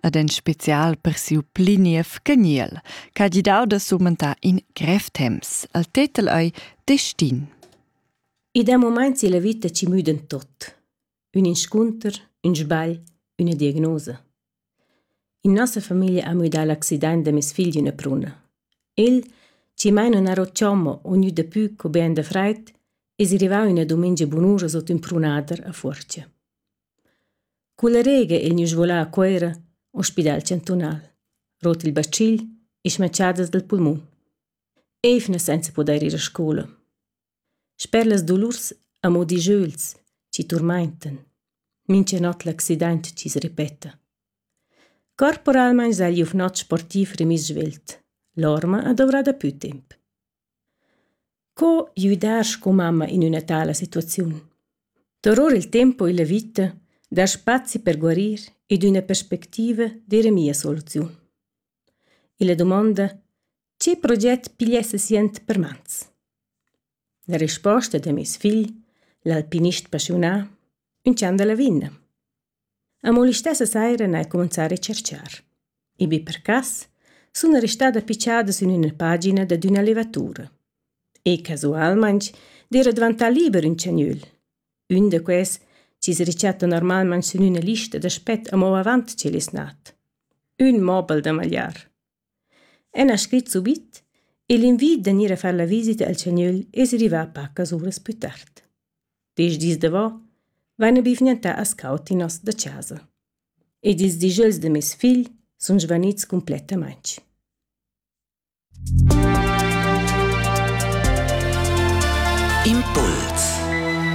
ed en special per siu pli niev geniel, ch'ha gidau da sumentar in grev temps. El tetel ei Destin. Ed a moments ella vita ci müden tot. Un inscunter, un sbagl, una diagnosa. In nossa famiglia ha müdà l'accident da mes figl üna pruna. El, ci mai non ero chommo o gnü dapü co ben da freit, es rivau üna dumengia bunura sot ün prunader a Fuorcha. Culla rega ein nus volà a Cuera, ospidal chantunal, rot il bacil e schmatschadas dal pulmun. Eivnas senza pudair ir a scoula. Sper las dolurs amo dijeuls chi turmaintan. Mincha not l'accident chi's repeta. Corporalmaing sai gliuf not sportiv remiss svelt. L'orma ha dovrà dapü temp. Co güdar sco mamma in üna tala situaziun? Duror il tempo illa vita dar spazi per guarir ed üna perspectiva d'eira mia soluziun. Illa dumonda «Che proget pigliess sient per mans?» La risposta da meis figl, l'alpinist passiunà, ün chan da lavinna. Amo listessa saira n'hai cumanzà a recerchar. In bi per cas sun restada picciada sün üna pagina dad üna levatura. E casualmaing d'eira dvantà liber ün tschgnügl. Ün da quels chi's rechattan normalmaing sün üna lista d'aspet amo avant ch'el es nat. Ün mobel da magliar. Ella ha scrit subit e l'invid da gnir a far la visita al schagnögl es rivà pacas uras plü tard. Desch dis davo vaina be vgnantà as caud in nos da chasa ed ils dijöls da meis figl sun svanits cumplettamaing. Impuls